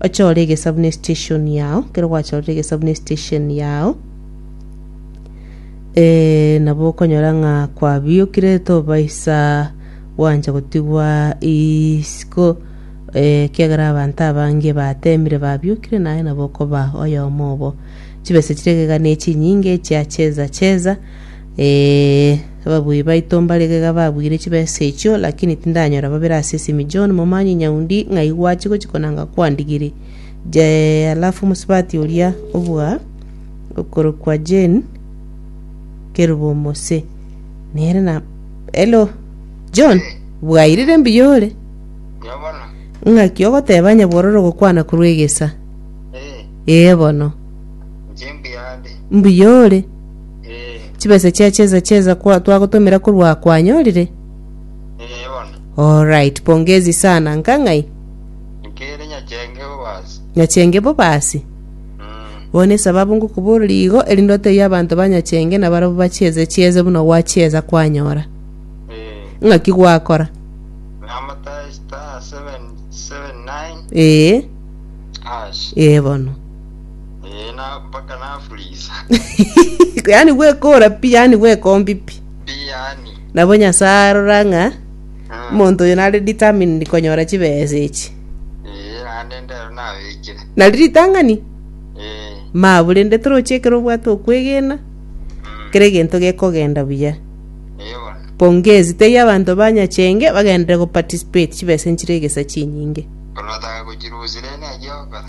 ochore egesabu ne station yao kero gwachorire egesabu ne station yao eh, nabo okonyora ng'a kwabiokire tobaisa gwancha gotigwa isiko eh, kiagera abanto abange batemire babiokire naye nabo okoba oyomo obo chibesa chire egega ne chinyinge chiacheza cheza Ee, ababuya baito mbare igega babuire chibesa echio, lakini tindanyora babere ase esimi. John, momanye nyaundi, ng'ai gwachia gochia konanga kwandigire? Je, alafu omosubati oria obua okorokwa Jane Kerubo Omose, nere na... Hello, John, bwairire mbuya ore? Buya bono. Ng'aki ogoteba onye bororo gokwana korwa egesa? Eh, Ee bono, inche mbuya ande. mbuya ore? Eh, chibesa chia cheza cheza kwa twagotomera korwa kwanyorire eh, bono. alright pongezi sana nkang'ai Nkere nyachenge bobasi. nyachenge bobasi Mm. bono esababu ngokoboreria igo erinde otebie abanto banyachenge na barabwo bachieze chieze buna gwachieza kwanyora Eh, ng'aki gwakora namata star 779 ee hash. ee bono Eh, na mpaka nafuriza. yani gwekora pi yani gwekombi pi Pi yani. nabo nyasaye arora ng'a Mm. omonto oyo nare determined konyora chibesa echi Eh, naende ndero nabekire. nari ritang'ani Eh. mabu rende toroche ekero obwate okwegena Mm. kera egento gekogenda buya Eh, bono. pongezi teiyo abanto banyachenge bagendere goparticipate chibesa nchire egesa chinyinge Kono otaka gochirusire ne giokora.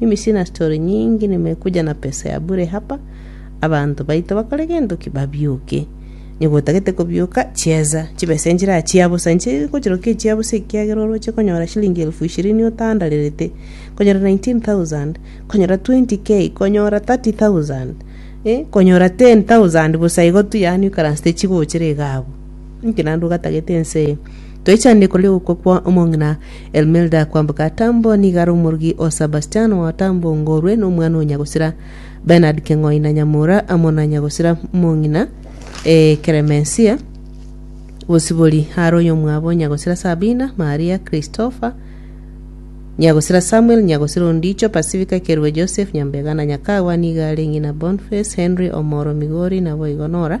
Mimi sina story nyingi nimekuja na pesa ya bure hapa abanto baito bakore gento ki babioke onye gotagete kobioka chieza chibesa enchera chia bosa inche gochirokia echia bosa ekiagera oroche konyora shilingi elfu ishirini otandarerete konyora 19000 konyora 20k konyora 30000 eh konyora 10000 bosa igo tu yaani okaransete chigochera iga abwo inki naende ogatagete ense eye. Twechandiko rigokwa kwa omong'ina Elmilda kwamboka Tambo nigo are omorogi o Sabastiano wa Tambo ngorwe nomwana o Nyagosira Bernard Keng'oi na Nyamura amo na Nyagosira mong'ina eh, Clemencia Bosibori are oyomwabo Nyagosira Sabina Maria Christopher Nyagosira Samuel Nyagosira Ondicho Pacifica Kerube Joseph Nyambega na Nyakagwa nigo are ng'ina Boniface Henry Omoro Migori naboigo Nora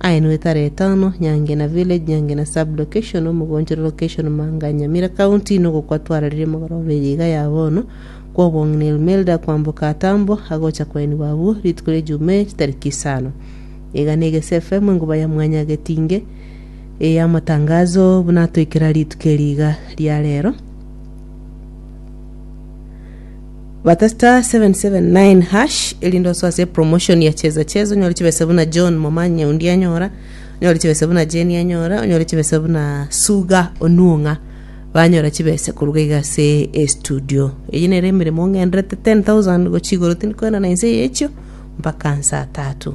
Aye nigo etare etano, Nyangena village, Nyangena sub location, Omogonchoro location, Manga Nyamira county, nogo kwa twararirie omogoro obe riga ya bono, kwa obong'ina Ilmelda kwamboka Atambo, agocha koenigwa abwo rituko ria Jumei chitariki isano. Iga negese FM enguba ya mwanya getinge e ya amatangazo buna atoikera rituko eri iga ria rero. Bata star 779 hash erinde oso ase promotion ya cheza cheza onyore chibesa buna John Momanyi Nyaundi anyora onyore chibesa buna Jenny anyora onyore chibesa buna Suga Onuong'a banyora chibesa koruga iga ase e studio eyi nere emeremo ng'enderete 10000 gochia igoro tindi koenana inse yechio mpaka nsa tatu